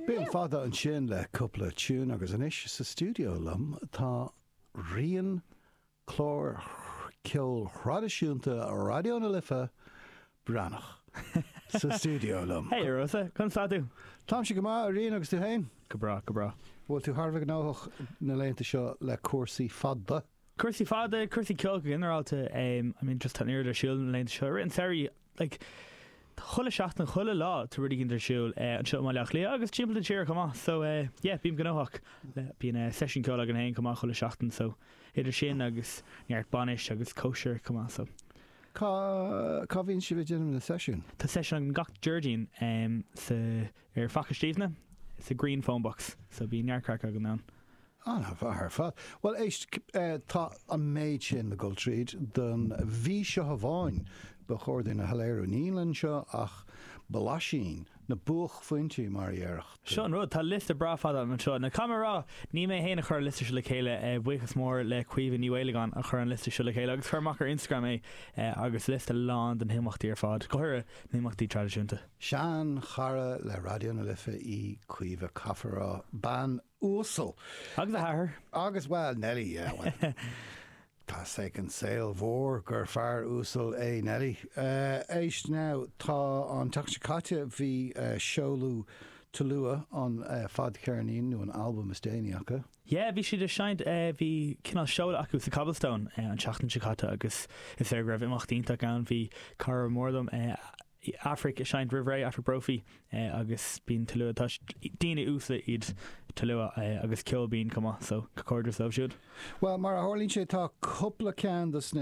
B'in Fada ansin le cúpla tune agus anois sa stiúideo liom tá Rian ó chlár ceoil thraidisiúnta Raidió na Life, Breathnach, sa stiúideo liom. Hey Rosa, conas tá tú? Táimse go maith, a Rian, agus tú fhéin? Go breá, go breá. Bhfuil tú thar a bheith gnóthach na laethanta seo le cúrsaí Fada? Cúrsaí Fada, cúrsaí ceoil go ginearálta, I mean just tá an oiread ar siúl na laethanta seo, really like chuile seachtain, chuile lá tá rud éigin ar siúl, anseo i mBaile Átha Cliath agus timpeall na tíre chomh maith so yeah bím gnóthach, bíonn seisiún ceoil againn féin chomh maith chuile sheachtain so idir sin agus neart bainis agus cóisir chomh maith so. Cá bhíonn sibh ag déanamh na seisiúin? Tá seisiún againn gach Déardaoin sa ar Fhaiche Stiabhna sa Green Phone Box so bíonn neart craic againn ann. An-mhaith ar fad. Bhuel éist, tá an méid sin le dul tríd don mhí seo amháin, ba chóir dúinn a shoiléiriú. Níl anseo ach blaisín, na buachphointí mar a déarfadh tú. Seo an rud, tá liosta breá fada anseo. Nó caithfidh mé a rá, ní mé fhéin a chuir an liosta seo le chéile, buíochas mór le Caoimhe Ní Mhaolagáin a chuir an liosta seo le chéile agus chuir amach ar Instagram é agus liosta lán de na himeachtaí ar fad, go háirithe na himeachtaí traidisiúnta. Sean chara le Raidió na Life í Caoimhe caithfear a rá, bean uasal. Agus a hathair. Agus bhuel, Nellie, yeah, bhuel. Tá 's ag an saol mhór gur fear uasal é Nellie. Éist, now, tá an tseachtain seo caite bhí seoladh Tulua an fadcheirnín nó an albam is déanaí acu. Yeah, bhí siad ag seinnt, bhí cineál seoladh acu sa Cobblestone an tseachtain seo caite agus is léir go raibh imeacht iontach ann. Bhí cara mór liom, Aifric ag seinnt roimh ré, Aifric Brophy, agus bíonn Tulua tá's agat daoine uasle iad Tulua agus ceol binn chomh maith so comhghairdeas dóibh siúd. Bhuel mar a tharlaíonn sé tá cúpla ceann dos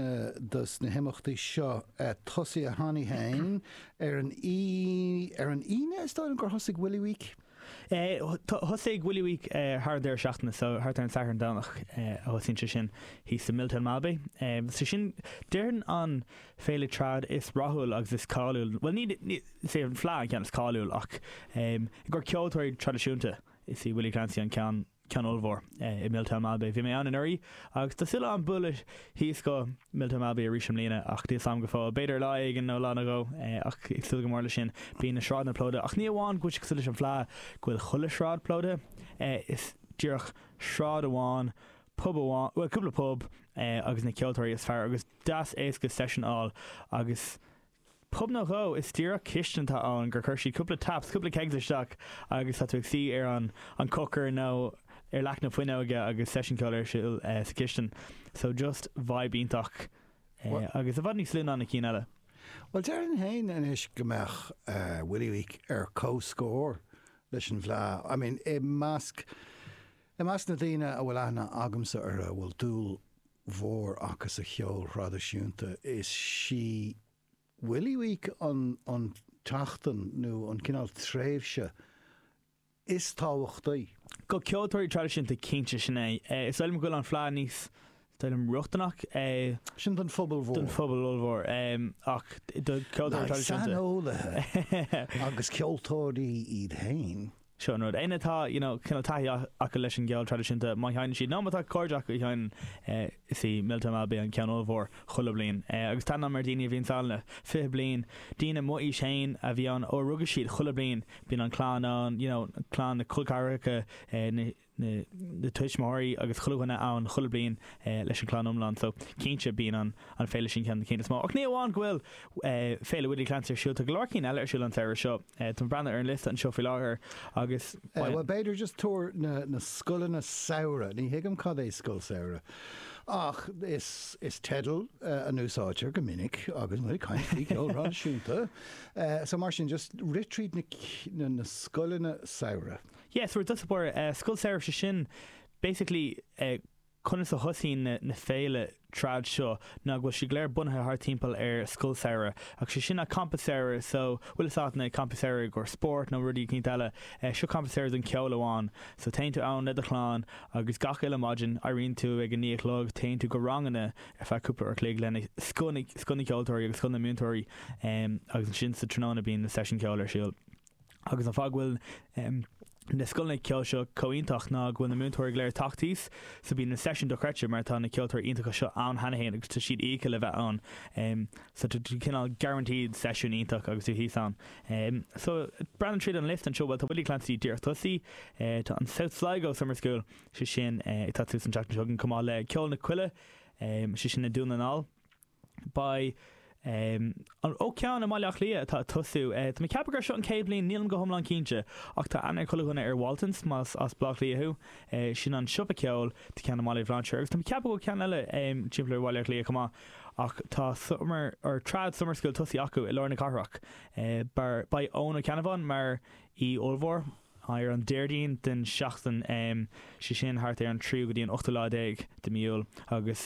na himeachtaí seo tosaithe cheana féin ar an Aoi ar an Aoine is dóigh liom gur thosaigh Willie Week? Thosaigh Willie Week thar an deireadh seachtaine so, thart ar an Satharn, Domhnach a thosaíonn sé sin, thíos i Milltown Malbay. So sin, déarfainn an féile trad is rathúil agus is cáiliúil, bhuel ní, is é an Fleadh an ceann is cáiliúil ach i gcomhair ceoltóirí traidisiúnta is í Willie Clancy an ceann, ceann ollmhór i Milltown Malbay. Bhí mé ann anuraidh agus tá súil agam bualadh thíos go Milltown Malbay arís i mbliana ach níl 's am go fóill. B'fhéidir lá éigin nó lá nó dhó ach ag súil go mór leis sin. Bíonn na sráideanna plódaithe ach ní amháin go bhfuil sé cosúil leis an bhfleá go bhfuil chuile shráid plódaithe, is díreach sráid amháin, pub amháin, bhuel cúpla pub agus na ceoltóirí is fearr agus deas éasca seisiún a fháil agus Pub nó dhó is díreach cistin atá ann gur chuir siad cúpla taps, cúpla kegs isteach agus tá tú ag suí ar an an cócaire nó ar leac na fuinneoige agus seisiún ceoil ar siúl sa chistin. So just vibe iontach agus i bhfad níos lú ná na cinn eile. Bhuel déarfainn féin anois go mbeadh Willie Week ar comhscór leis an bhfleá. I mean i measc i measc na daoine a bhfuil aithne agamsa orthu bhfuil dúil mhór acu sa cheol thraidisiúnta. Is sí Holy Week an an tseachtain nó an cineál tréimhse is tábhachtaí. Do ceoltóirí traidisiúnta, cinnte, sin é. Is dóigh liom go bhfuil an Fleadh níos dóigh liom rochtana. Sin don phobal mhór. Don phobal ollmhór. Ach do ceoltóirí traidisiúnta. Saineolaithe agus ceoltóirí iad féin. seo an rud. Éinne atá you know cineál taithí acu leis an gceol traidisiúnta má sheineann siad nó má tá cairde acu a sheineann eh is í Miltown Malbay an ceann ollmhór chuile bliain. Eh agus tá aithne agam ar daoine a bhíonn ann le fiche bliain, daoine mo aois féin a bhí ann ó a rugadh siad, chuile bliain bíonn an clann ann you know clann, na colceathracha eh na na tuismitheoirí agus chuile dhuine ann chuile bliain leis an chlann iomlán so cinnte bíonn an féile sin ceann de cinn is mó. Ach ní amháin go bhfuil Féile Willie Clancy ar siúl, tá go leor cinn eile ar siúl an samhradh seo. Tá mé ag breathnú ar an liosta anseo faoi láthair agus ba. Bhuel b'fhéidir just tuar na scoileanna samhraidh, ní thuigim cad é scoil samhraidh ach is teideal a úsáidtear go minic agus muid ag caint faoi cheol thraidisiúnta so mar sin just rith tríd na scoileanna samhraidh. Yeah so is éard is eh Scoil Samhraidh seo sin basically eh conas a thosaíonn na na féile trad seo ná go bhfuil siad go léir bunaithe thar timpeall ar Scoil Samhraidh ach sé sin ná Campa Samhraidh so bhfuil fhios a'at na Campaí Samhraidh do spóirt nó rudaí eicínt eile eh seo Campa Samhraidh don ceol amháin so téann tú ann le do chlann agus gach uile maidin éiríonn tú ag a naoi a chlog téann tú go ranganna ar feadh cúpla uair chloig lena scoth na scoth na gceoltóirí agus scoth na múinteoirí eh agus ansin sa tráthnóna bíonn na seisiúin ceoil ar siúl. agus an fáth go bhfuil na scoileanna ceoil seo chomh iontach ná go bhfuil na múinteoirí go léir tagtha thíos so bíonn na seisiúin dochreidte mar tá na ceoltóirí iontacha seo ann cheana fhéin agus tá siad íoctha le bheith ann so tá tú cineál guaranteed seisiún iontach agus tú thíos ann so ag breathnú tríd an liosta anseo bhuel tá Willie Clancy díreach tosaithe tá an South Sligo Summer School sé sin ag tarlú san tseachtain seo chomh maith le ceol na coille sé sin i nDún na nGall Beidh ansin ceann i mBaile Átha Cliath atá ag tosú. Tá mé ag ceapadh gur seo an chéad bhliain, nílim go hiomlán cinnte, ach tá aithne ag chuile dhuine ar Waltons, más as Baile Átha Cliath thú. Sin an siopa ceoil, tá ceann i mBaile Bhlainséir agus tá mé ag ceapadh go bhfuil ceann eile timpeall ar Bhaile Átha Cliath chomh maith. Ach tá summer, or trad summer school tosaithe acu i lár na cathrach. Beidh Eoin Ó Ceannabháin mar aoi ollmhór ar an Déardaoin den seachtain, sé sin thart ar an tríú go dtí an ochtú lá déag de mí Iúil, agus.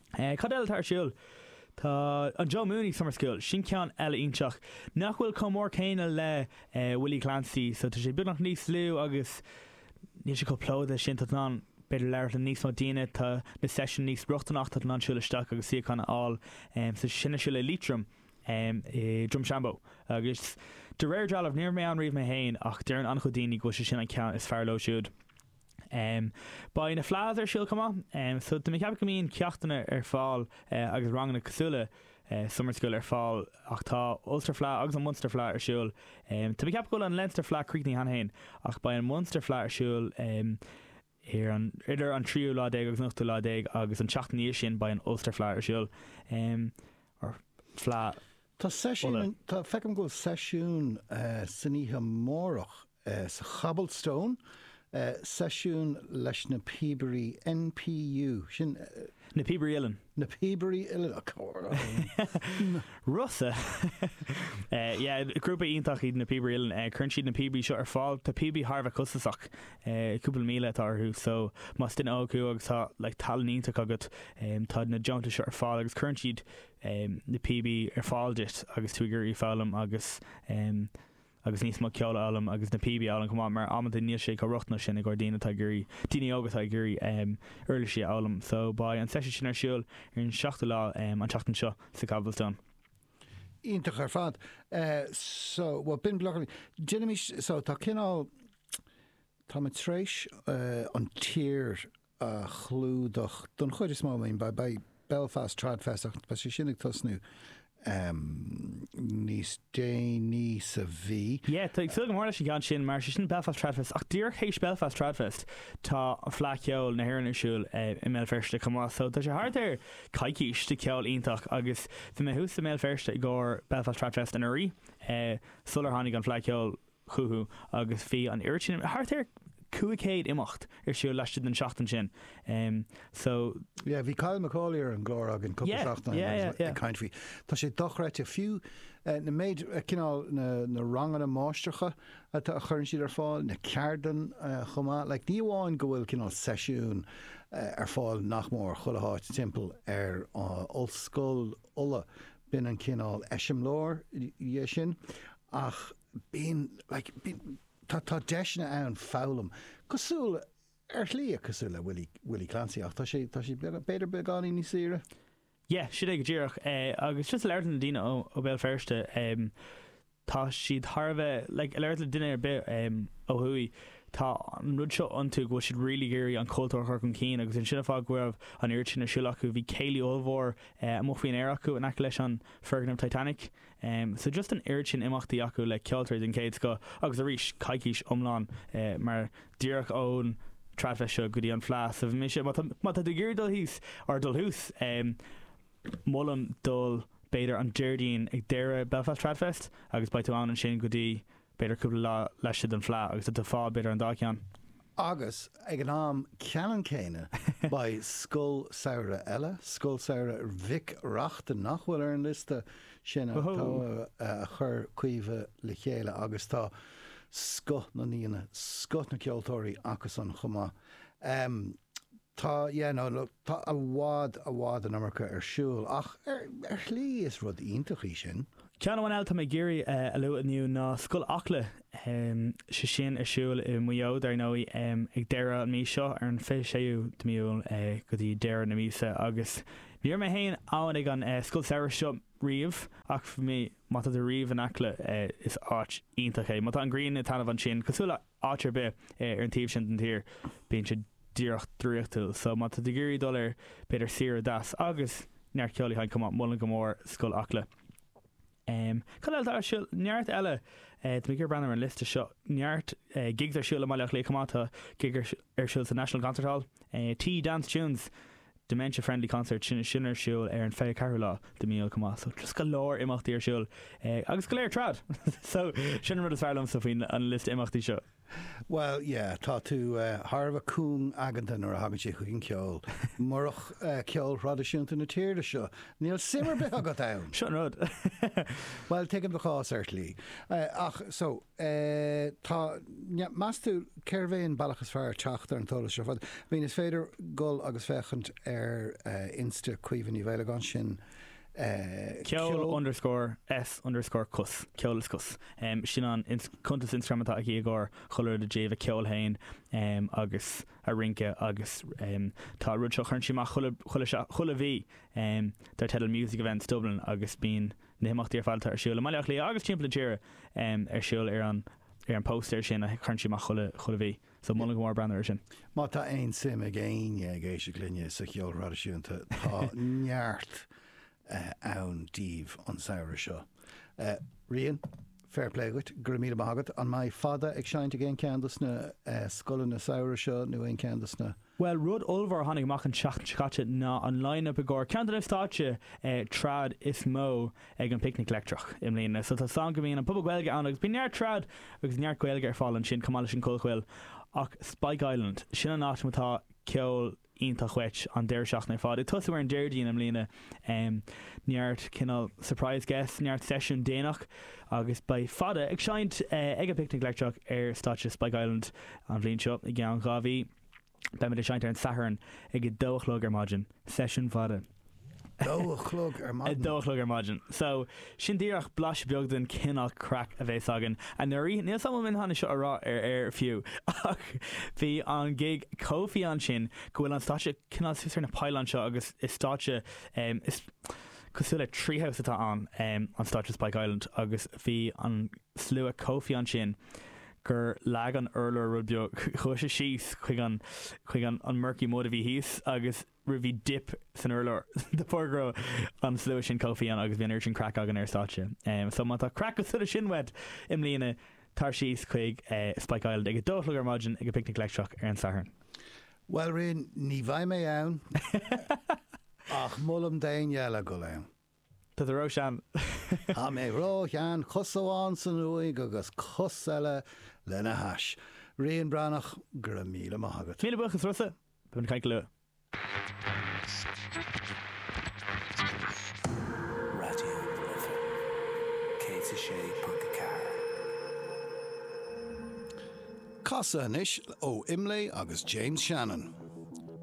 Cad eile atá ar siúl? Tá an Joe Mooney Summer School, sin ceann eile iontach. Nach bhfuil chomh mór céanna le Willie Clancy so tá sé beagnach níos lú agus níl sé chomh plódaithe sin. Tá tú in ann b'fhéidir labhairt le níos mó daoine, tá na seisiúin níos rochtaineach, tá tú in ann siúl isteach agus suíochán a fháil. So sin ar siúl i Liatroim, i Drumshanbo agus de réir dealramh, ní raibh mé ann riamh mé féin ach deireann an-chuid daoine go bhfuil sé sin an ceann is fearr leo siúd. Beidh na Fleadhs ar siúl chomh maith so tá mé ag ceapadh go mbíonn ceachtanna ar fáil agus ranganna cosúil le Summer School ar fáil ach tá Ulster Fleadh agus an Munster Fleadh ar siúl. Tá mé ag ceapadh go bhfuil an Leinster Fleadh críochnaithe cheana féin ach beidh an Munster Fleadh ar siúl idir an tríú lá déag agus an ochtú lá déag agus an tseachtain ina dhiaidh sin beidh an Ulster Fleadh ar siúl. Fleadh Uladh. Tá seisiún, feicim go bhfuil seisiún san oíche amárach sa Cobblestone, seisiún leis na Píobairí NPU, sin. Na Píobairí Uilleann. Na Píobairí Uilleann, of course! Rossa! Yeah, grúpa iontach iad na Píobairí Uilleann. Cuireann siad na píobaí seo ar fáil. Tá píobaí thar a bheith costasach, cúpla míle atá orthu, so más duine óg thú agus tá talann iontach agat, tá na deontais seo ar fáil agus cuireann siad na píobaí ar fáil duit agus tú ag iarraidh foghlaim agus. agus níos mó ceoil a fhoghlaim agus na píobaí a fhoghlaim chomh maith mar amanta níl sé chomh rochtana sin i gcomhair daoine atá ag iarraidh daoine óga atá ag iarraidh uirlisí a fhoghlaim so beidh an session sin ar siúl ar an 7ú lá an tseachtain seo sa Cobblestone. iontach ar fad so bhuel b'in déanaimís so tá cineál tá mé tar éis an tír a chlúdach don chuid is mó. Maybe beidh Belfast Tradfest ach beidh sé sin ag tosnú níos déanaí sa mhí. Yeah, tá ag súil go mór leis an gceann sin mar 'sé sin Belfast Tradfest ach díreach tar éis Belfast Tradfest tá Fleadh Cheoil na hÉireann ar siúl i mBéal Feirste chomh maith so tá sé thart ar coicís de cheol iontach agus bhí mé thuas i mBéal Feirste i gcomhair Belfast Tradfest anuraidh sular tháinig an Fleadh Cheoil chucu agus bhí an oiread sin, thart ar 500 imeacht ar siúl laistigh den tseachtain sin so. Yeah, bhí Kyle Macauley ar an gclár againn cúpla seachtain ó shin agus ag caint faoi. Tá sé dochreidte, fiú na méid, cineál na ranganna máistreacha a chuireann siad ar fáil, na ceardlanna chomh maith. Like ní amháin go bhfuil cineál seisiúin ar fáil nach mór chuile háit timpeall ar Ollscoil Uladh, b'in an cineál eiseamláir de sin ach, bíonn like bíonn tá tá deiseanna ann foghlaim cosúil ar shlí cosúil le Willie Willie Clancy ach tá sé tá sé b'fhéidir beagáinín níos saoire. Yeah sin é go díreach é agus just ag labhairt le daoine ó ó Béal Feirste é tá siad thar a bheith like ag labhairt le duine ar bith é ó thuaidh tá an rud seo iontu go bhfuil siad really ag iarraidh an cultúr chur chun cinn agus is in an fáth go raibh an oiread sin ar siúl acu bhí céilí ollmhór é amuigh faoin aer acu in aice leis an foirgneamh Titanic a Am, so just an oiread sin imeachtaí acu le ceoltóirí den chéad scoth agus arís coicís iomlán mar díreach ón Trad Fest seo go dtí an fleadh so bhí mise, má tá, má tá tú ag iarraidh dul thíos nó dul thuas am molaim dul b'fhéidir an Déardaoin ag deireadh Belfast Trad Fest agus beidh tú ann ansin go dtí b'fhéidir cúpla lá laistigh den fleadh agus a fháil b'fhéidir an dá cheann. Agus ag an am ceannann céanna beidh scoil samhraidh eile, Scoil Samhraidh Mhic Reachtain, nach bhfuil ar an liosta sin atá a chuir Caoimhe le chéile agus tá scoth na n-aíonna, scoth na gceoltóirí acusan chomh maith. Tá, yeah, no, look, tá i bhfad, i bhfad an iomarca ar siúl ach ar, ar shlí is rud iontach é sin. Ceann amháin eile atá mé ag iarraidh a lua inniu ná Scoil Acla, sé sin ar siúl i Maigh Eo dar ndóigh ag deireadh an mhí seo, ar an 26ú de mí Iúil go dtí deireadh na míosa agus ní raibh mé féin ann ag an scoil samhraidh seo riamh ach bhí mé, má tá tú riamh in Acla is áit iontach é, má tá an ghrian ag taitneamh ansin cosúil le. áit ar bith ar an taobh sin den tír bíonn sé díreach draíochtúil. So má tá tú ag iarraidh dul ar b'fhéidir saoire deas agus neart ceoil a sheinn chomh maith, molaim go mór Scoil Acla. Em, cad eile atá ar siúl? Neart eile eh, tá mé ag iarraidh breathnú ar an liosta seo, neart eh, gigs ar siúl i mBaile Átha Cliath chomh maith, tá gig ar siúl sa National Concert Hall eh, Tea Dance Tunes, Dementia Friendly Concert, sin sin ar siúl ar an 24ú lá de mí Iúil chomh maith so just go leor imeachtaí ar siúl ag agus go léir trad so sin an rud is fearr liomsa faoin liosta imeachtaí seo. Bhuel yeah tá tú thar a bheith cúng aigeanta nuair a thagann sé chuig an ceol. Murach ceol thraidisiúnta na tíre seo níl suim ar bith agat ann! Seo an rud. Bhuel tuigim do chás ar shlí. Ach so tá. Meas tú cérbh é an bealach is fearr teacht ar an t-eolas seo ar fad? Bhíonn, is féidir dul agus féachaint ar insta Caoimhe Ní Mhaolagáin, ansin ceol. underscore is underscore cos, ceol is cos, sin an cuntas Instagram atá aici i gcomhair chuile rud i dtaobh a ceoil féin agus a rince agus tá rud seo a chuireann sí amach chuile mhí dar teideal Music Events Dublin agus bíonn na himeachtaí ar fad atá ar siúl i mBaile Átha Cliath agus timpeall na tíre ar siúl ar an ar an post sin a chuireann sí amach chuile chuile mhí. So molaim go mór breathnú ar sin. Má tá aon suim ag éinne ag éisteacht linne sa cheol thraidisiúnta tá neart ann díbh an samhradh seo. Rian? Fair play dhuit, go raibh míle maith agat. An mbeidh fada ag seinnt ag aon cheann dos na scoileanna samhraidh seo nó aon ceann dos na. Bhuel rud ollmhór a tháinig amach an tseachtain seo caite ná an line-up i gcomhair ceann de na stáitse trad is mó ag an bPicnic Leictreach i mbliana. So tá a fhios againn go mbíonn an Puball Gaeilge ann agus bíonn neart trad agus neart Gaeilge ar fáil ansin chomh maith leis an Chollchoill ach Spike Island, sin an áit má tá ceol iontach uait an deireadh seachtaine ar fad. Ag tosú ar an Déardaoin i mbliana, neart cineál surprise guests, neart seisiún déanach agus beidh Fada ag seinnt ag an bPicnic Leictreach ar stáitse Spike Island. An bhliain seo, i gceann dhá mhí, beimid ag seinnt ar an Satharn ag a dó a chlog ar maidin. Seisiún fada. dó a chlog ar maidin. dó a chlog ar maidin. So, sin díreach blaiseadh beag den cineál craic a bhí againn anuraidh. Níl 's am an bhfuil mé in ann é seo a rá ar aer fiú, ach bhí an gig chomh fiáin sin go bhfuil an stáitse cineál suas ar na poilíní seo agus is stáitse, em, is cosúil le treehouse atá ann, em, an stáitse Spike Island agus bhí an slua chomh fiáin sin gur leag an urlár rud beag, chuaigh sé síos chuig an, chuig an, an murky mud a bhí thíos agus. raibh bhí dip san urlár de bharr go raibh an slua sin chomh fiáin agus bhí an oiread sin craic againn ar stáitse so má tá craic cosúil leis sin uait i mbliana tar síos chuig Spike Island ag a dó a chlog ar maidin ag an bPicnic Leictreach ar an Satharn. Bhuel Rian, ní bheidh mé ann ach molaim d'éinne eile dul ann. Tá tú ró-shean. Tá mé ró-shean, cos amháin san uaigh agus cos eile lena hais. Rian Breathnach, go raibh míle maith agat. Míle buíochas Rossa, beidh mé ag caint go luath. Raidió na Life 106.4. Casfad anois ó Imlé agus James Shannon.